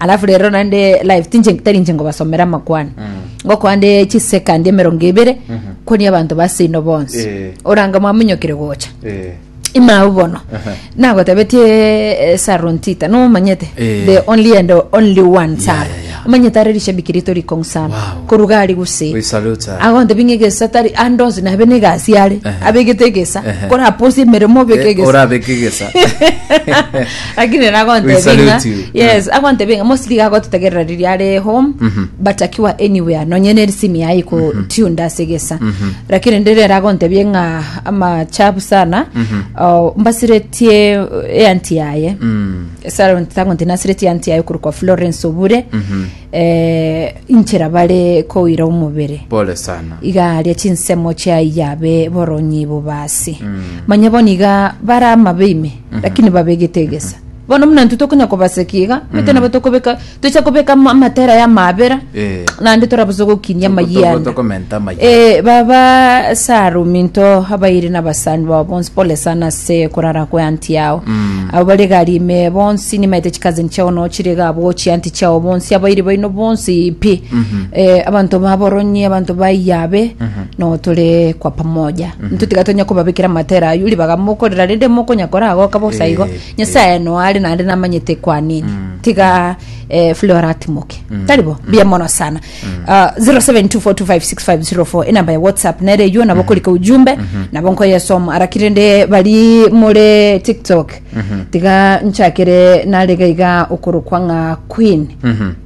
alafu rero naende live tinche tari inche ngobasomera amakwana ngokoa nde chisekandi emerongo ebere kwania abanto baseino bonsi Eh. oranga mwamunyokire gocha Eh. imao bono Aha. nagotebetie eh, sarontita nomanyete Eh. the only and only one saro yeah, yeah. omanyete are rishabiki rito rikong'u sana Wow. koruga ari gose We salute her. agonte binge gesa tari andos nabe ne gasi are Aha. abegete gesa Aha. kora posi meremo beke Eh, gesa orabeke gesa lakini We nagontebinga salute you. yes agontebinga mostly gagotetegerera riria are home but akiwa anywhere nonye ne simi yaye ko tune ase gesa lakini ndire aragontebie ng'a amachabu sana oh, mbasiretie eanti yaye Sharon tagonti nasiretie eanti yaye korokwa Florence Obure eh, inchera bare koira omobere pole sana igaria chinsemo chiai yabe boronyi bobasi manya bono iga bara amabe ime lakini babegete egesa bono buna intwe tokonya kobaseki iga bete nabo tokobeka tocha kobeka ama- amatera ya amabera Eh. naende torabosa gokinia Toko- toko- amayianda tokomenta amayianda. Eh, baba sarum into abairi na abasani bao bonsi pole sana ase korara kwa anti yao abo bare gari ime bonsi nimaete chikazini chao nao chire iga abwo chi anti chao bonsi abairi baino bonsi pi eh, abanto baboronyi abanto baiyabe nao tore kwa pamoja Intwe tiga tonya kobabekera amatera ayio ribaga mokorera rende mokonya kora agoka bosa igo Eh, nyasaye no are naende namanyete kwanini tiga eh, flora atimoke tari bo bia mono sana Ah, 0724256504 enamba ya whatsapp nere eyo nabo korika ujumbe nabo nkoyesoma araki rende bari more tiktok tiga nchakere narega iga okorokwa ng'a queen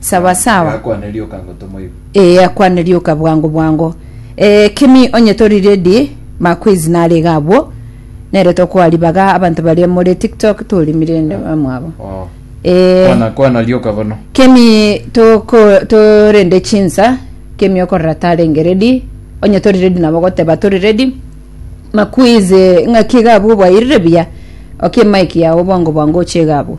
Sawa sawa. Gakwane rioka ango tomoibe. Ee akwane rioka bwango bwango. Eh, Kimi onye tori ready, maquiz nare iga abwo. Nere tokoa ribaga abanto baria more TikTok torimire inde bamwabo. Oh. Eh, Kwana kwana rioka bono. Kemi toko torende chinsa Kemi okorora tarenge ready onye tori ready nabo goteba tori ready makuize ng'aki gabo bwairire buya oke mike yawo bwango bwango oche gabo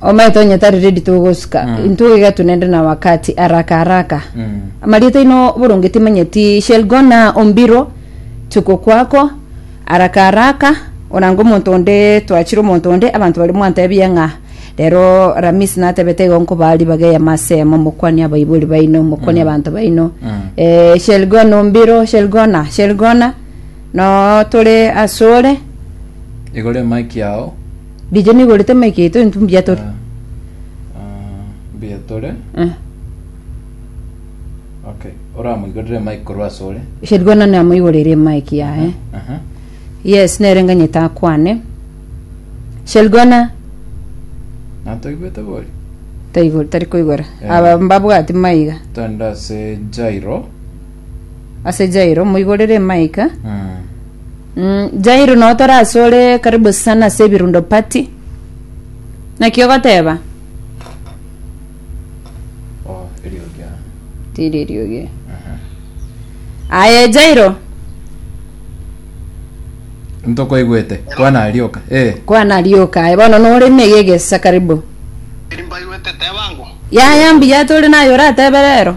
omaete onye tari ready togosuka Mm. intwe iga tunende na wakati haraka haraka Mm. amarieta ino boronge timanyeti shall go na ombiro tuko kwako haraka haraka onanga omonto onde twachire omonto onde abanto bari mwantebie ng'a rero ramis natebete igo nkoba ribaga ya masemo mokwanie abaibori baino mokwanie abanto baino Mm. eh, shall go na ombiro shall go na shall go na Noo tore asore. Igoro emaki yao. Riche nigorete emaki yaito intwe mbuya tore. Ah, ah, mbuya tore. Eh. Okay. Oramoigorere emaki korwa asore. Sherigwe none amoigorere emaki yaye. Aha. Yes, nere nganyete akwane. Sherigwana Natoigwete bori. taigor tari koigora. Eh. Aba mbabwati maiga. Tanda se Jairo. ase Jairo, moigorere emaika. Mm, Jairo nao torasore karibu sana ase ebirundo party. Naki ogoteba? Oh, eriogi ah. Tiri eriogi. Aye Jairo, Ntokoigwete. Kwana arioka. Eh. kwana arioka aye bono nore mege egesa karibu. Mbaigwete teba ango. Yaya mbuya tore naye oratebe rero.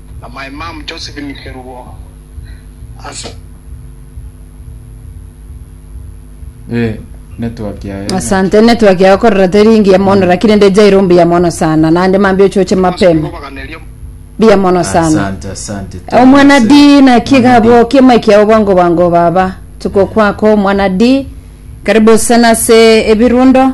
na my mum Josephine Kerubo ase Ee, network yaye nya- Asante network yao korora teri ngiya mono lakini nde jairo mbuya mono sana nande mambia ochoche mapema kobaganeria mbuya mono sana Asante, asante. Thank omwana you, di sir. na Mwana kigabo di. kiema kiao bwango bwango baba tuko kwako omwana di karibu sana se ebirundo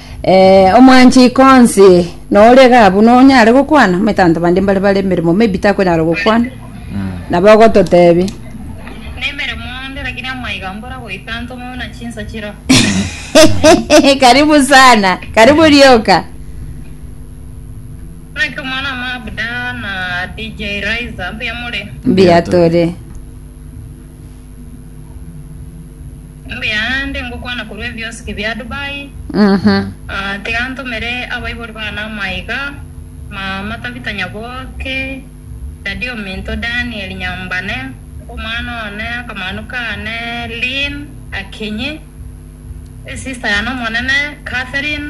Ee, omwanchiko onsi noria iga abwo nonyare gokwana, omanyete abanto bande mbare bare emeremo maybe takonyara gokwana, nabo ogototebia. Nemeremo onde lakini amaiga mbora goika ntome buna chinsa chiro. karibu sana, karibu rioka. Naki omwana ama Abda na DJ Raiza mbuya more. Mbuya tore. Mbuya ande ngokwana korwa ebiosiki bia Dubai, ah, tiga ntomere abaibori bane amaiga, Maama Tabitha Nyaboke, Daddy ominto Daniel Nyambane, omwana one, akamanu kane Lynn Akinyi, esister yane omonene Catherine,